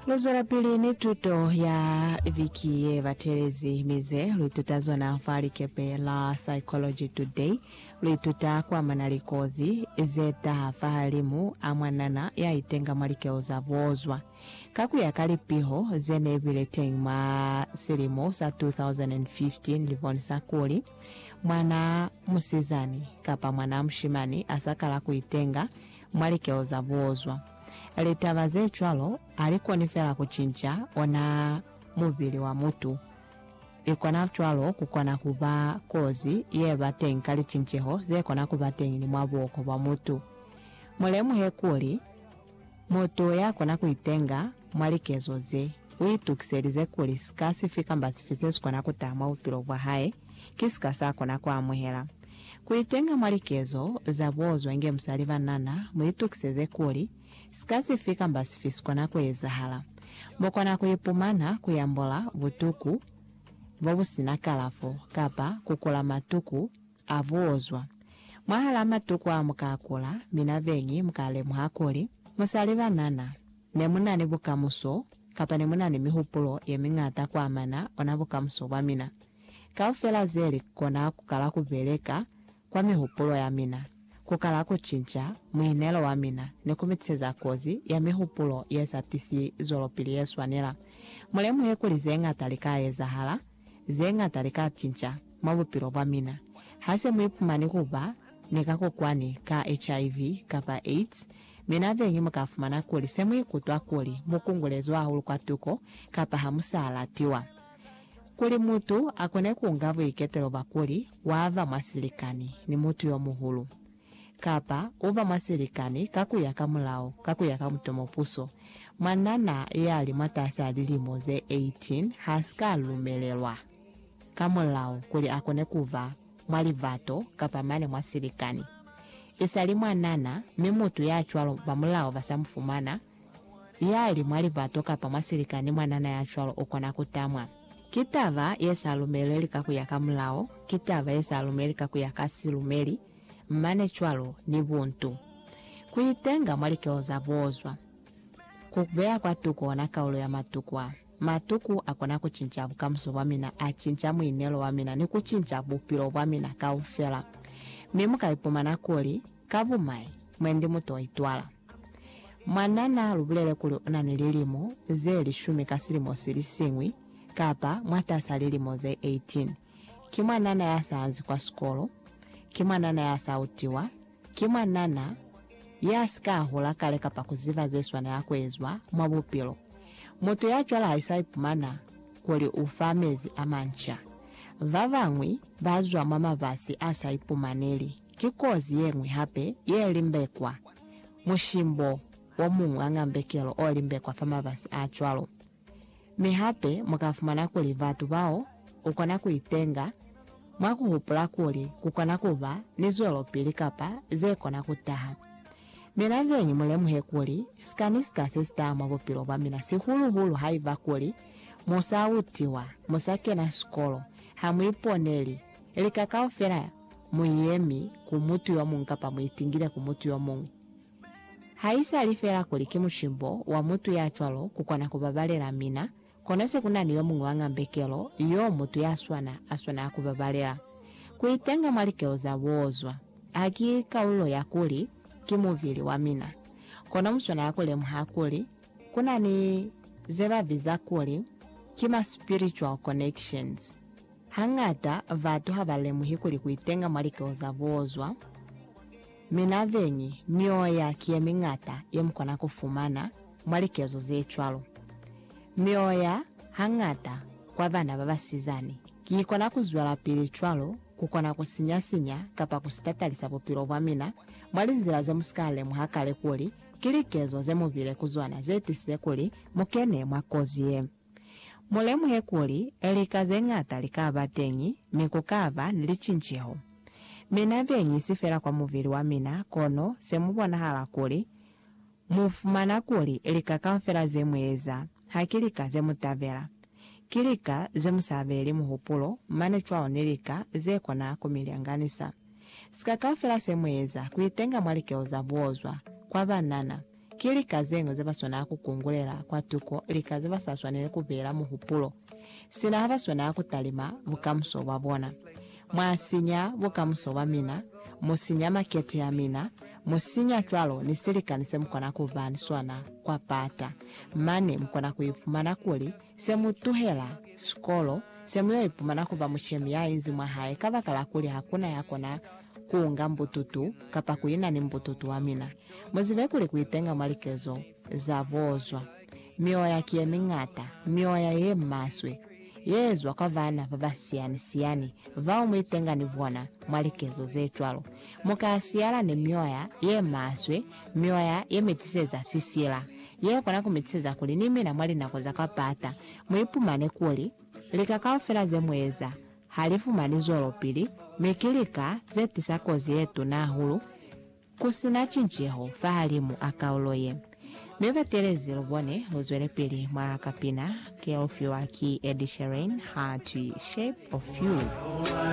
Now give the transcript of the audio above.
Luzwelapili ni tuto ya viki yebatelezi mi ze luituta zona fa likepe la Psychology Today. Luituta kuamana ni kozi zetaha fahalimu a mwanana yaitenga mwa likeo za bozwa. Ka kuya ka lipiho zene bile teñi mwa silimo sa 2015 libonisa kuli, mwana musizani kapa mwana mushimani asakala kuitenga mwa likeo za bozwa. Litaba ze cwalo ha li koni fela ku cinca ona mubili wa mutu. I kona cwalo ku kona ku ba kozi ye ba teñi ka licinceho ze kona ku ba teñi ni mwa buhoko bwa mutu. Mu lemuhe kuli, mutu ya kona ku itenga mwa likezo ze, u itukiselize kuli sika sifi kamba sifi se si kona ku taha mwa bupilo bwa hae, ki sika sa kona ku amuhela. Ku itenga mwa likezo za buozwa inge musali banana, mu itukiseze kuli, sika sifi kamba sifi sikona ku ezahala, mu kona ku ipumana ku yambola butuku bo bu si na kalafo kapa ku kula matuku a buozwa. Mwahal'a matuku a mu ka a kula, mina beñi mu ka lemuha kuli, Musali banana, ne mu na ni bukamuso, kapa ne mu na ni mihupulo ye miñata ku amana ona bukamuso bwa mina. Kaufela ze li kona ku kala ku beleka kwa mihupulo ya mina, ku kala ku cinca muinelo wa mina ni ku miteza kozi ya mihupulo ye sa tisi zwelopili ye swanela. Mu lemuhe kuli ze ñata li ka ezahala, ze ñata li ka cinca mwa bupilo bwa mina. Ha se mu ipumani ku ba ni kakokwani ka HIV kapa AIDS, mina beñi mu ka fumana kuli se mu ikutwa kuli mu kungulezwe hahulu kwa tuko kapa ha mu sa latiwa. Kuli mutu akone kuunga buiketelo bwa kuli waba mwa silikani ni mutu yomuhulu, kapa uba mwa silikani ka kuya ka mulao ka kuya ka mutomopuso, mwanana yali mwatasi a lilimo ze 18 hasika lumelelwa ka mulao kuli akone kuba mwa libato kapa mane mwa silikani. Isali mwanana, mi mutu yacwalo bamulao basa mufumana. Yali mwa libato kapa mwa silikani mwanana ya cwalo ukona ku tamwa. Ki taba ye sa lumeleli ka kuya ka mulao, ki taba ye sa lumeli ka kuya ka silumeli, mane cwalo ni buntu. Ku itenga mwa likeho za boozwa. Ku beya kwa tuku ona kaulo ya matuku a. Matuku a kona ku cinca bukamuso bwa mina, a cinca muinelo wa mina ni ku cinca bupilo bwa mina kaufela. Mi mu ka ipumana kuli, Ka bumai, mwendi mutu o itwala. Mwan'a n'a lu bulele kuli u na ni lilimo ze lishumi ka silimo si li siñwi, kapa mwatas'a lilimo ze 18. Ki mwanana ya sa anzi kwa sikolo, ki mwanana ya sa utiwa, ki mwanana ya si ka hula kale kapa ku ziba ze swanela ku ezwa mwa bupilo. Mutu ya cwalo ha sa ipumana kuli u fa mezi a manca. Ba bañwi ba zwa mwa mafasi a sa ipumaneli. Ki kozi ye ñwi hape ye limbekwa. Mushimbo wo muñwi wa ñambekelo o limbekwa fa mabasi a cwalo. Mi hape mu ka fumana kuli batu bao u kona ku itenga, mwa ku hupula kuli ku kona ku ba ni zwelopili kapa ze kona ku taha. Mina zeñwi mu lemuhe kuli sika ni sika se si taha mwa bupilo bwa mina, sihulu-hulu haiba kuli mu sa utiwa, mu sa kena sikolo, ha mu iponeli lika kaufela Muyemi ku mutu yomuñwi kapa muitingile ku mutu yomuñwi. Haisali feela kuli ki mushimbo wa mutu ya cwalo kukona kubabalela mina, kono se kunani yomuñwi wa ngambekelo yo mutu ya swana a swanela kubabalela. Kuitenga mwa likelo za buozwa haki kalulo ya kuli ki mubili wa mina, kono muswanela kulemuha kuli kunani zebabiza kuli ki ma spiritual connections. Hañata batu habalemuhi kuli kuitenga mwa likeo za buozwa. Mi nabeñi, mioya ki yemiñata yemukona kufumana mwa likezo zecwalo. Mioya, hañata, kwa bana babasizani, ki ikona kuzwelapili cwalo, kukona kusinya-sinya kapa kusitatalisa bupilo bwamina mwa linzila zemusika lemuha kale kuli ki likezo zemubile kuzona zetisile kuli mukene mwa kozi ye. Mu lemuhe kuli, lika ze ñata li ka ba teñi, mi ku ka ba ni licinceho. Mina beñi si fela kwa mubili wa mina, kono se mu bonahala kuli, mu fumana kuli lika kaufela ze mu eza, ha ki lika ze mu tabela. Ki lika ze mu sa beeli muhupulo, mane cwalo ni lika ze kona ku mi lyanganisa. Sika kaufela se mu eza ku itenga mwa likelo za buozwa, kwa banana, Ki lika zeñwi zebaswanaa kukungulela kwa tuko lika zebasaswaneli kubeela muhupulo, sina habaswanaa kutalima bukamuso bwabona. Mwasinya bukamuso bwamina, musinya makete amina, musinya cwalo ni silikani semukona kuba ni sona kwa pata, mane mukona kuipumana kuli Se mu tuhela sikolo, se mu yo ipumana ku ba mushemi ya inzi mwa hae kabakala kuli ha ku na ya kona ku unga mbututu kapa ku ina ni mbututu wa mina. Mu zibe kuli ku itenga mwa likezo za bozwa, mioya ki ye miñata, mioya ye maswe, ye zwa kwa bana ba ba siyani-siyani bao mu itenga ni bona mwa likezo ze cwalo. Mu ka siyala ni mioya ye maswe Mioya ye mi tiseza sisila ye kona ku mi tiseza kuli ni mina mwa linako za ka pata mu ipumane kuli lika kaufela ze mu eza ha li fumani zwelopili mi ki lika ze tisa kozi ye tuna hahulu ku si na cinceho fahalimu a kaulo ye. Mi batelezi lu bone lu zwelepili mwa kapina ke lu fiwa ki Ed Sheeran ha twi Shape of You.